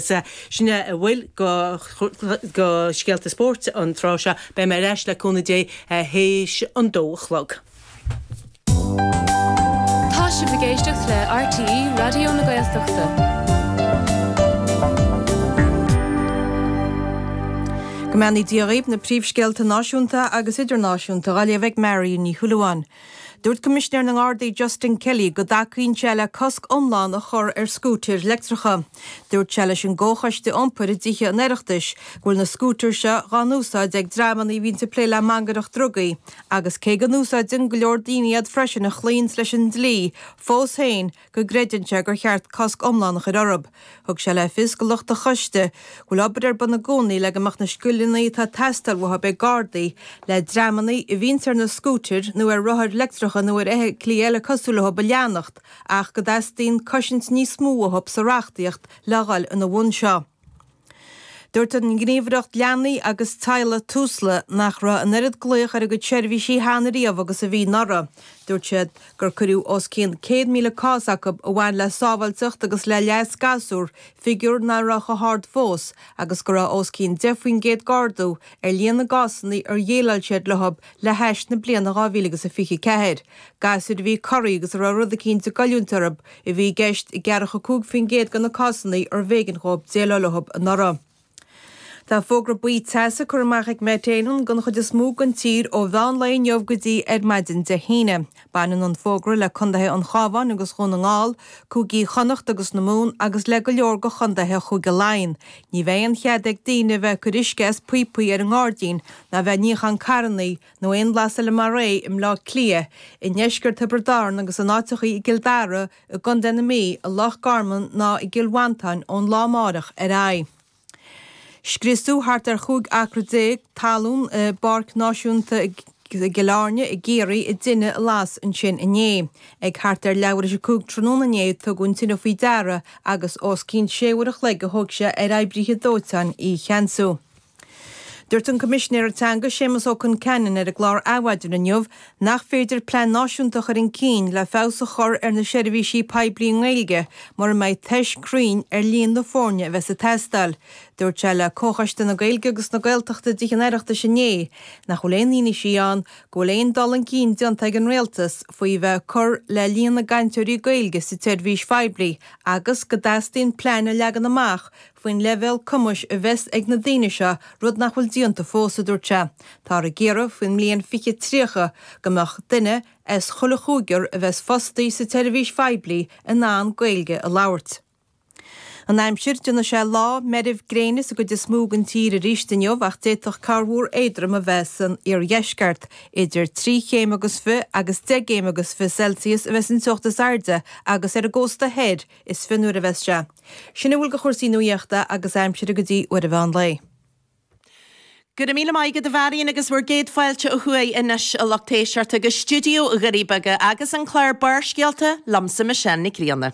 Sin é a bhfuil go scéalta spóirt an tráth seo. Beidh mé ar ais, le cúnamh Dé, théis an dó a chlog. Tá sibh ag éisteacht le RTÉ Raidió na Gaeltachta. Go mbeannaí Dia dhaoibh na príomhscéalta náisiúnta agus idirnáisiúnta dhá léamh ag Marion Ní Shúilleabháin. Dúirt Coimisinéir na nGardaí Justin Kelly go dtacaíonn sé le cosc iomlán a chur ar scútair leictreacha. Dúirt sé leis an gComhchoiste Iompair i dTithe an Oireachtais go bhfuil na scútair seo dá n-úsáid ag dreamanna a bhíonn ag plé le mangaireacht drugaí agus cé go n-úsáideann go leor daoine iad freisin a chloíonns leis an dlí, fós féin, go gcreideann sé gur cheart cosc iomlán a chur orthu. Thug sé le fios do lucht an choiste go bhfuil obair ar bun i gcónaí le go mbeadh na scileanna atá ag teastáil uathu ag Gardaí le dreamanna a bhíonns ar na scútair nó ar rothair leictreacha nó ar fheithiclí eile cosúil leo a leanacht ach go dteastaíonn cosaint níos mó uathu sa reachtaíocht le dhul ina bhun seo. Dúirt an Ghníomhaireacht Leanaí agus Teaghlaigh, Tusla, nach raibh an oiread glaoch ar a gcuid seirbhísí cheana riamh agus a bhí anuraidh. Dúirt siad gur cuireadh os cionn 100,000 cás acu a bhain le sábháilteacht agus le leas gasúr, figiúr nach raibh chomh hard fós, agus go raibh os cionn 10 faoin gcéad d'ardú ar líon na gcásanna ar dhéileáil siad leo le hais na bliana 2024. Gasúir a bhí corraithe agus a raibh rud eicínt ag goilliúint orthu, a bhí i gceist i gceathracha cúig faoin gcéad de na cásanna arbh éigean dhóibh déileáil leothu anuraidh. Tá fógra buí teasa curtha amach ag Met Éireann don chuid is mó den tír ó mheán lae inniu go dtí ar maidin Dé hAoine. Baineann an fógra le contaetha an Chábháin agus Dhún na nGall, cúigí Chonnacht agus na Mumhan agus le go leor de chontaetha Chúige Laighean. Ní bheidh aon chead ag daoine a bheith ag cur uisce as píopaí ar an ngairdín ná a bheith ag níochán carrannaí, nó aon bhlas eile mar é i mBleá Cliath, i ndeisceart Thiobraid Árann agus in áiteachaí i gCill Dara, i gContae na Mí, i Loch Garman ná i gCill Mhantáin ón lá amáireach ar aghaidh. Scriosadh thart ar chúig acra déag talún i bPáirc Náisiúnta Chill Airne i gCiarraí i dtine a las ansin inné. Ag thart ar leathuair théis a cúig tráthnóna inné a tugadh an tine faoi deara agus os cionn sé uair a chloig a thóg sé ar oibríthe dóiteáin í a cheansú. Dúirt an Coimisinéir Teanga Séamus Ó Conceanainn ar an gclár Adhmhaidin inniu nach féidir plean náisiúnta a chur an cinn le feabhas a chur ar na seirbhísí poiblí i nGaeilge mura mbeidh tuiscint chruinn ar líon na foirne a bheas ag teastáil. Dúirt sé le Comhchoiste na Gaeilge agus na Gaeltachta i dTithe an Oireachtais inné nach bhfuil aon fhianaise ann go bhfuil aon dul an cinn déanta ag an Rialtas faoi bheith ag cur le líon na gcainteoirí Gaeilge sa tseirbhís phoiblí agus go dteastaíonn plean a leagan amach faoin leibhéal cumais a bheas ag na daoine seo, rud nach bhfuil déanta fós, a dúirt sé. Táthar ag iarraidh faoin mbliain 2030 go mbeadh duine as chuile chúigear a bheas fostaithe sa tseirbhís phoiblí in ann Gaeilge a labhairt. An aimsir, Déanfaidh sé lá meirbh gréine sa gcuid is mó den tír arís inniu ach d'fhéadfadh corrmhúr éadrom a bheith san iardheisceart. Idir trí chéim agus fiche agus deich gcéim agus fiche Celsius a bheas an teocht is airde agus ar an gcósta thoir is fionnuaire a bheas sé. Sin a bhfuil de chúrsaí nuaíochta agus aimsire go dtí uair an mheán lae. Go raibh míle maith agat a Mharion agus bhur gcéad fáilte ó thuaidh anois a lucht éisteachta go stiúideo Dhoirí Beaga agus an clár Barrscéalta liomsa Michelle Nic Grianna.